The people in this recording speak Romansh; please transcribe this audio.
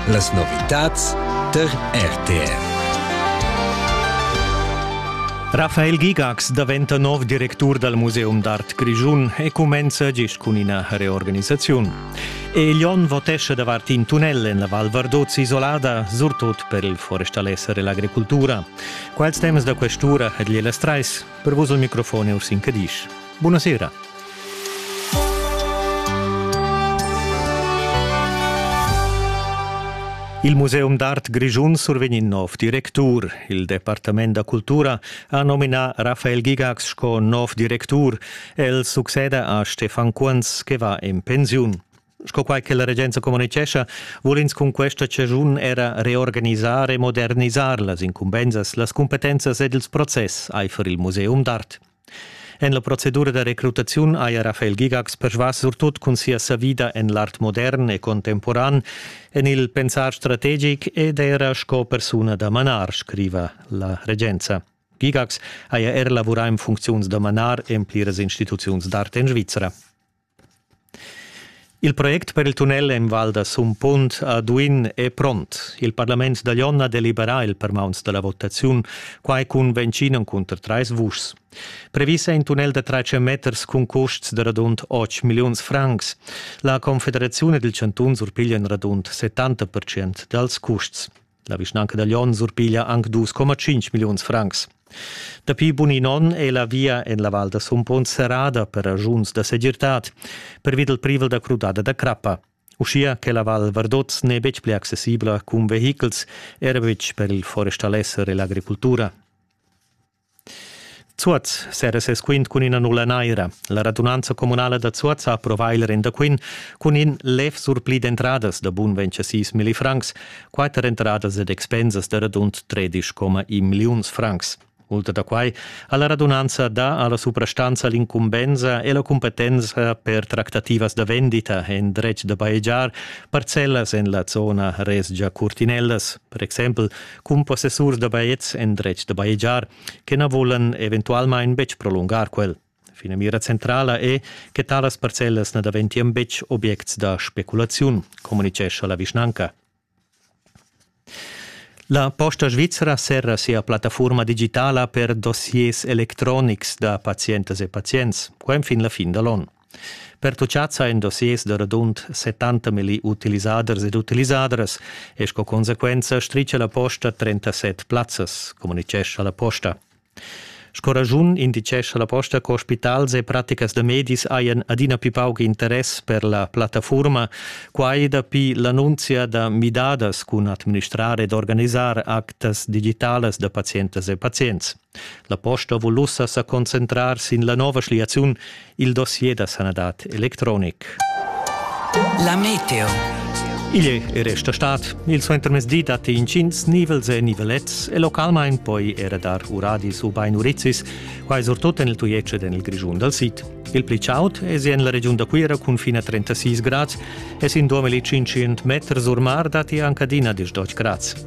Las novitads tar RTR. Rafael Gigax daventa nov directur dal Museum d'art grischun e cumenza gist cun ina reorganisaziun. Elion votescha davart in tunnel en la Val Vardozzi isolada, surtut per il forestalesser e l'agricultura. Quels temas da questura het gliela strais. Per vos il microfon è Ursin Cadisch. Buonasera. Il Museum d'art grischun survegn in nov directur. Il Departament da cultura ha nominà Raphael Gigax sco nov directur. El succeda a Stefan Kunz, che va en pensiun. Sco quai che la regenza communicescha, vul ins cun questa ciagiun era reorganisar e modernisar las incumbensas, las cumpetenzas ed ils process aifer il Museum d'art. En la procedura da recrutaziun haja Rafael Gigax persvas surtut cun sia savida en l'art modern e contemporan, en il pensar strategic ed era sco persuna da manar, scriva la regenza. Gigax haja er lavurà en funcziuns da manar en pliras instituziuns d'art en Svizra. Il project per il tunnel en Val da Sumpunt a Duin è pront. Il parlament da Jon ha deliberà il permauns da la votaziun, quai cun ventschin cunter trais vuschs. Previs è in tunnel da tratga meters cun custs da radund 8 milliuns francs. La Confederaziun ed il chantun surpiglian radund 70% dals custs. La vischnanca da Lyon surpiglia anc 2,5 milliuns francs. Dapi bun in onn è la via en la Val da Sumpon serrada per ragiuns da segirtad pervi dal privel da crudada da crappa. Uschia che la Val Vardoz n'è betg pli accessibla cun vehichels, era betg per il forestalesser e l'agricultura. Zuoz sera ses quint cun üna nulla naira. La radunanza communala da Zuoz ha approvà il rendaquint cun in lev surpli d'entradas da bun 26 milli francs, quatter entradas ed expensas da radund 13,1 milliuns francs. Ultra da quai ha la radunanza dà alla suprastanza l'incumbensa e la cumpetenza per tractativas da vendita en dretg da bajegiar parcellas en la zona Resgia Curtinellas. per exempel cun possessurs da bajetgs endretg da bajegiar, che na volan eventualmain betg prolungar quel. Finamira centrala è che talas parcellas na daventian betg objects da speculaziun, communicescha la vischnanca. La Posta Svizzera serra sia plattafurma digitala per dossiers electronics da pazientas e pazients, qua fin la fin da l'on. Pertuchads ha in dossiers da radund 70 milli utilisaders ed utilisadras e sco consequenza stricia la posta 37 plazzas, communitgescha la posta. Sco ragiun indicescha la posta co spitals e praticas da medis hajan adina più pauc interess per la plattafurma, quai dapi l'annunzia da midadas cun administrar ed organisar actas digitalas da pazientas e pazients. La posta vul ussa sa concentrar sin la nova schliaziun il dossier da sanadad electronic. La meteo. Igl e resta stat. Il suentermezdi datti intgins nivels e nivelets e localmain poi era dar uradis ubain urizis, quai surtut en il Tujetsch ed en il Grischun dal sid. Il pli chaud è en la regiun da Cuira cun fin a 36 grads e sin 2500 meters or mar datti anche adina 10 grads.